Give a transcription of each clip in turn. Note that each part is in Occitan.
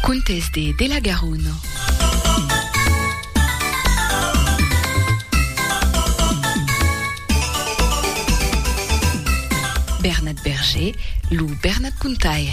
Contes de de la Garona. Bernat Berger, lo Bernat Contaire.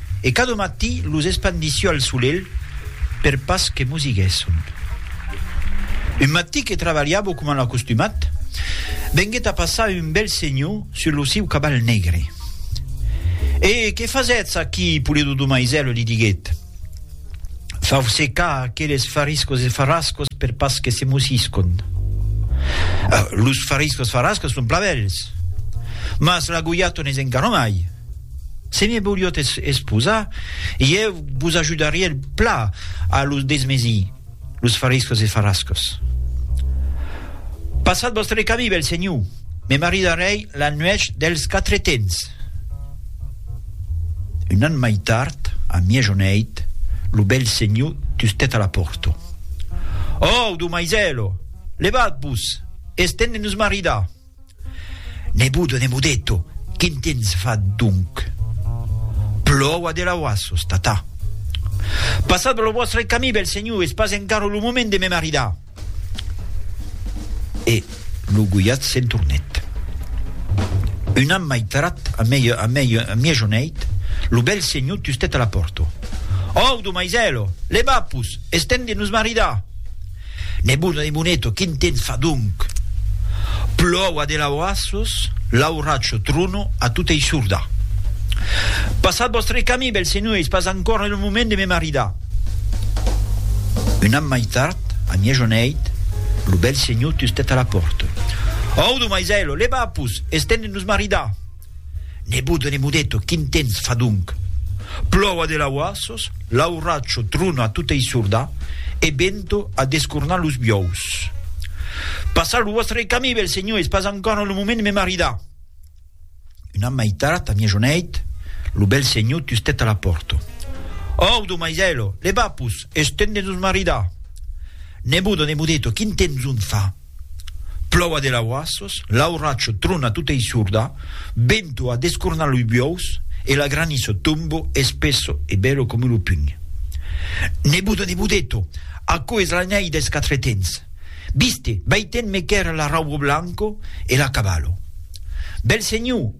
E cada matí los espandissió al solelh per pas que mosiguèsson. Un matí que trabalhavo coma l'acostumat, venguèt a passar un bèl senhor sus lo siu caval negre. E que fasètz aquí, Pulido do Maisèl? li diguèt. Fau secar aqueles fariscos e farrascos per pas que se mosiscon. Los fariscos farrascos son plan bèls, mas la goiaton es encara mai. Se me voliot esposar, ieu vos ajudarie pla a los desmesir, los fariscos e farascos. Passat vòstre camí, bèl senhor, me maridarèi la nuèch dels Quatretens. Un an mai tard, a mièjoneit, lo bèl senhor tustèt a la pòrta. Òu, domaisèlo, levat-vos, es temps de nos maridar! Nebudo de Mudeto, quin tens fat donc? Plòua de lauassos, tata. Passat lo vòstre camí, bèl senhor, es pas encara lo moment de me maridar. E lo goiat se'n tornèt. Un an mai tard, a miejoneit, lo bèl senhor tustèt a la pòrta. Audo, maisèlo! Levapos! Es temps de nos maridar! Nebuna de Muneto, quin temps fa donc? Plòu a de laurassos, lauracho, trono, a tota issorda. Passat vòstre camí, bèls senhors, pas ancòra lo moment de me maridar. Un an mai tard, a miejoneit, lo bèl senhor tustet a la pòrta. Audo, maisèlo, leva-pus, es temps de nos maridar! Nebot de Nemodeto, quin temps fa donc? Plòu a de lauassos, l'auracho trona a tota issorda e vento a descornar los biòus. Passar lo vòstre camí, bèl senhor, es pas encòra lo moment de me maridar. Una maitat a miejoneit, lo bèl senhor tustèt a la pòrta. Òu, domaisèlo, levapos, es temps de nos maridar! Nebot de Nemodeto, quin temps ont fa? Plòu a de lauassos, l'auracho trona tota i sorda, vento a descornar lu biòus e l'agraniço tombo espesso e bèlo come lu pugn. Nebodo, nebodeto, aquò es la nèi des quatre tens. Viste, vei ten me quèr l'arraubo blanco e l'acabalo. Bèl senhor!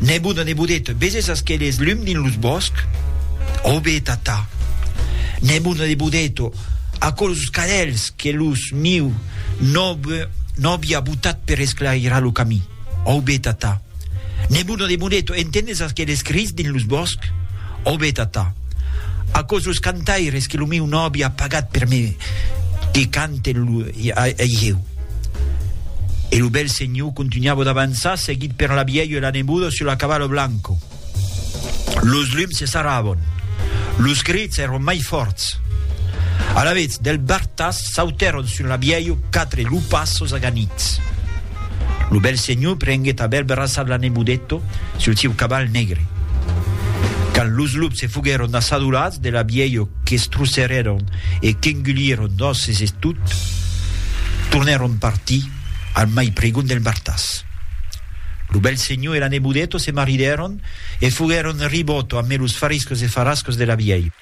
Nebot a nebodet, veses aqueles lum dins los bòsc? Ò be, tata! Nebot a nebodet, ò aquelos cadelhs que los miu nòve nòvi a botat per esclairar lo camí? Ò be, tata! Nebot a nebodet, entendes aqueles crits dins los bòsc? Ò be, tata! Aquesos cantaires que lo miu nòvi a pagat per me que canten Ei jeu. E lo bèl senhor contunhava d'avançar, seguit per la vièlha e la neboda sul la cavala blanca. Los lums se sarravan. Los crits èran mai fòrts. Alavetz, del bartas sautèron sul la vièlha quatre lupassos aganits. Lo bèl senhor prenguèt a bèl braçat la nebodeta sul sieu caval negre. Quand los lups se foguèron assadolats de la vièlha qu'estrusserèron, e qu'engulieron nòces e tot, tornèron partir al mai pregon del martàs. Lo bèl senhor e la nebodeta se maridèron e foguèron ribòto amé los fariscos e farascos de la vièlha.